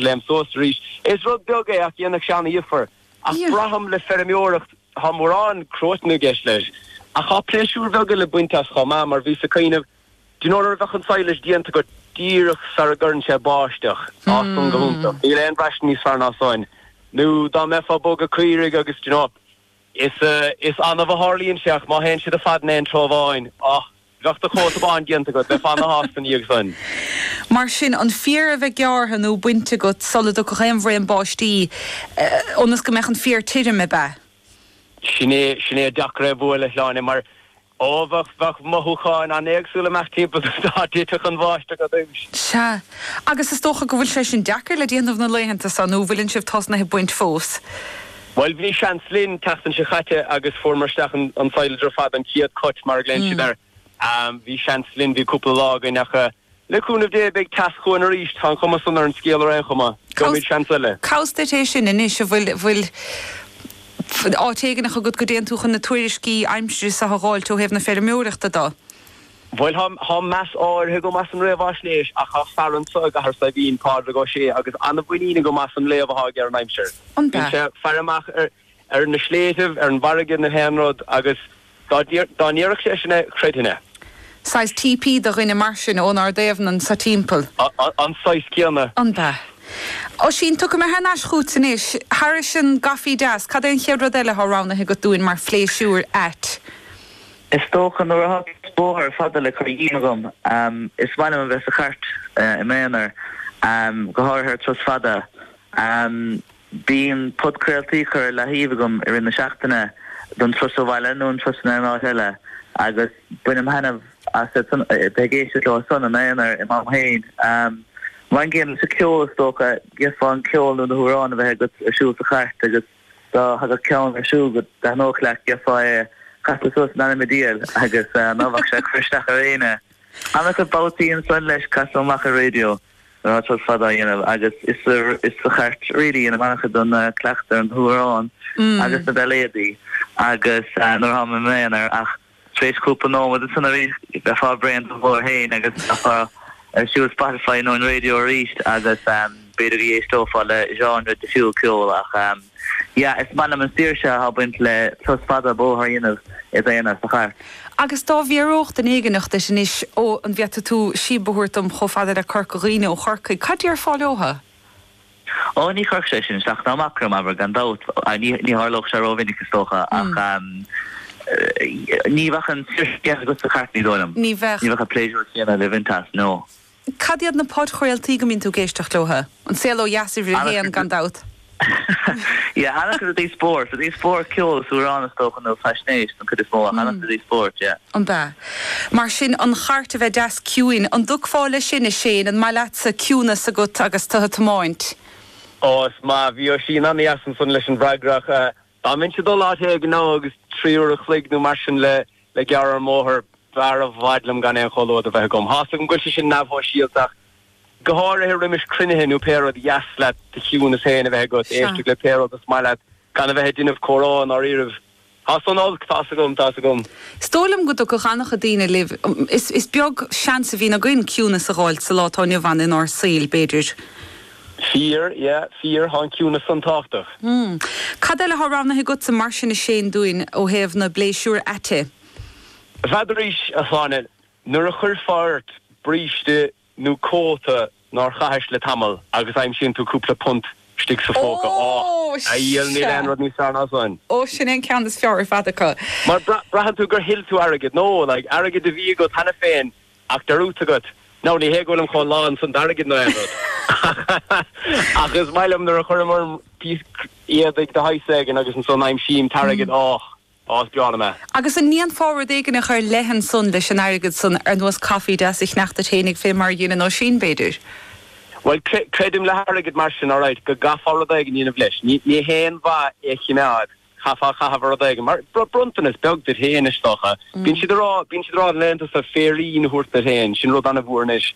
léim suas arís. Is rud beag é ach dhéanfadh sé ana-dhifear. Ach braithim le feirmeoireacht tá mórán cruaiteain i gceist leis. Ach tá pléisiúir bheaga le baint as chomh maith mar bhíos ag cuimhneamh, do you know, nuair a bheadh an sadhlais déanta agat díreach sara gcuireann sé báisteach, tá san go hiontach. Níl aon bhraistint níos fearr ná san. Nó dá mbeifeá ag bogadh caoirigh agus, do you know, is, is annamh a tharlaíonn sé ach má théann siad ar fad in aon treo amháin, oh. Bheadh do chosa bán déanta agat, bheifeá ana-shásta ina dhiaidh san. Mar sin, an féar a bheith gearrtha nó bainte agat sula dtiocfadh aon bhraon báistí, ionas go mbeadh an féar tirim, ab ea? Sin é, sin é. Deacair é a bhualadh, a Shláine, mar ó, bheadh, bheadh mothúcháin an-éagsúla amach timpeall dá dtitfeadh an bháisteach ar dtúis. Sea. Agus is dócha go bhfuil sé sin deacair le déanamh na laethanta so, nó bhfuileann sibh tosnaithe ag baint fós? Bhuel, bhí seans linn an tseachtain seo caite agus fuaireamar isteach an sadhlas ar fad, an chéad cut mar a ghlaonn siad air. Bhí seans linn, bhí cúpla lá againn ach le cúnamh Dé beidh teas chugainn arís. Tá an chuma san ar an scéal ar aon chuma. Gheobhaimid seans eile. Conas duit é sin anois, an bhfuil bhfuil áit éigin agat go dtéann tú chun na tuairiscí aimsire seo a dh'fháilt ó thaobh na feirmeoireachta do? Bhuel, tá meas áirithe agam as an réamhaisnéis ach tá fear anseo i gCathair Saidhbhín, Pádraig Ó Sé, agus an-mhuinín agam as an léamh atá aige ar an aimsir. Bíonn sé ag faire amach ar na sléibhtibh, ar an bhfarraige nó aon rud agus dá ndéarfadh sé sin é, chreidfinn é. Saghas TP do dhuine mar sin ón aird Duibhneach anso timpeall. An saghas céanna. Ab ea? Oisín, tiocfaidh mé thar n-ais chughat anois. Thairis sin, a Chaitlís, cad é an chéad rud eile atá roghnaithe agat dúinn mar phléisiúr ait? Is dócha, nuair atá píosa bóthair fada le cur díom agam, is maith liom a bheith sa chairt i m'aonar, go háirithe ar turas fada. Bíonn podchraoltaí curtha ar leathaobh agam i rith na seachtaine don turas abhaile nó an turas in aon áit eile agus bainim thaitneamh as a bheith ag éisteacht leosan im aonar i m'am féin. Mar an gcéanna leis an gceol, is dócha. D'fhéadfá an ceol nó na hamhráin a bheith agat ar siúl sa chairt agus. Dá thagadh ceann ar siúl go dtaitneodh leat gheofá é a chasadh suas in ainm a diail agus ná bheadh sé ag cur isteach ar éinne. Ach babhtaí ansan leis casaim amach an raidió nuair atá turas fada á dhéanamh agus is sa is sa chairt really is mó a bheinn ag cleachtadh na hamhráin agus na beiléadaí agus nuair a tháim im aonar ach Tar éis cúpla nóiméad ansan arís bheifeá bréan den ghlór féin agus bheifeá ag cur ar siúl Spotify nó an raidió arís agus b'fhéidir go n-éisteofá le genre difriúil ceoil ach yeah, is maith liom an saoirse atá ag baint le turas fada bóthair a dhéanamh i d'aonar sa chairt. Agus dá bhfiafródh duine éigineach díot anois, ó, an bhféadfaidh tú síob a thabhairt dom chomh fada le Corca Dhuibhne ó Chorcaigh, cad déarfá leotha? Ó, ní chuirfeadh sé sin isteach ná amach orm, abair, gan dabht. Ní tharlódh sé rómhinic, is dócha, ach ní bheadh an tseift chéanna agat is an chairt lán, dar liom. Ní bheadh. Ní bheadh an pléisiúr céanna le baint as, no. Cad iad na podchraoltaí go mbíonn tú ag éisteacht leo? An Saol Ó Dheas, uimhir a haon, gan dabht. Yeah, ana-chuid i dtaobh spóirt. I dtaobh spóirt, ceol is amhráin, is dócha, nó faisnéis, don chuid is mó, ach ana-chuid i dtaobh spóirt, yeah. Ab ea? Mar sin, an chairt a bheith deas ciúin, an dtiocfá leis sin, a Shane? An maith leatsa ciúnas agat agus tú ag tiomáint? Ó, is maith. Bhí Oisín an-deas ansan leis an bhfreagra ach dá mbeinnse ag dul áit éigin agus trí uair a chloig nó mar sin le gearradh ar an mbóthar, b'fhearr i bhfad liom gan aon chomhluadar bheith agam. Thá's agam go bhfuil sé sin neamh-shóisialta ach go háirithe roimis cruinnithe nó pé rud ba dheas leat do chiúnas féin a bheith agat, éisteacht le pé rud is maith leat, gan a bheith ag déanamh comhrá i ndáiríribh. Thá san olc, tá's agam, tá's agam. Is dóigh liom go dtiocfadh an-chuid daoine libh, is beag seans a bhíonn againn ciúnas a dh'fháilt sa lá atá inniu ann inár saoil, b'fhéidir. Fíor, yeah, fíor, thá an ciúnas san tábhachtach. Hm. Cad eile thá roghnaithe agatsa mar sin a Shane dúinn ó thaobh na bpléisiúir aite? N'fheadar 's, a Shláine, nuair a chuirfeá ort bríste nó cóta nár chaithis le tamall agus aimsíonn tú cúpla punt istigh sa phóca. Ó! Níl, níl aon rud níos fearr ná san. Ó, sin é an ceann is fearr ar fad acu. Mar braitheann tú gur thuill tú airgead, nó, like, airgead a bhí agat cheana féin ach tá a fhios agat, now, ní hé go bhfuil im chónaí lán san d'airgead nó aon rud. Ach is maith liom nuair a chuirim orm píosa éadaigh de shaghas éigin agus ansan aimsím t'airgead, och! Ó, is breá liom é. Agus an ndéanfá rud éigneach ar leith ansan leis an airgead san, ar nós caife deas a cheannach duit fhéineach fé mar a dhéanann Oisín, b'fhéidir? Bhuel, creidim, le hairgead mar sin, alright, go gcaithfeá rud éigin a dhéanamh leis. Ní haon mhaith é a chimeád, chaithfeá é a chaitheamh ar rud éigin, mar bronntanas beag duit fhéin, is dócha. Bíonn siad a rá, bíonn siad a rá, an leathbhronntanas, féirín a thabhairt duit fhéin, sin rud an-mhór anois.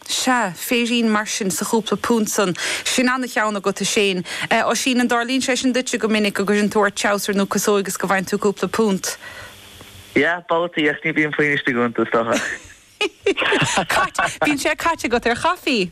Sea, féirín mar sin sa chúpla punt san, sin ana-cheann agat, a Shane. Eh, Oisín, an dtarlaíonn sé sin duitse go minic, go gcuireann tú ort treabhsar nó casóig is go bhfaigheann tú cúpla punt? Yeah, babhtaí, ach ní bíonn puinn istigh iontu, is dócha. Cait, bíonn sé caite agat ar chaifí?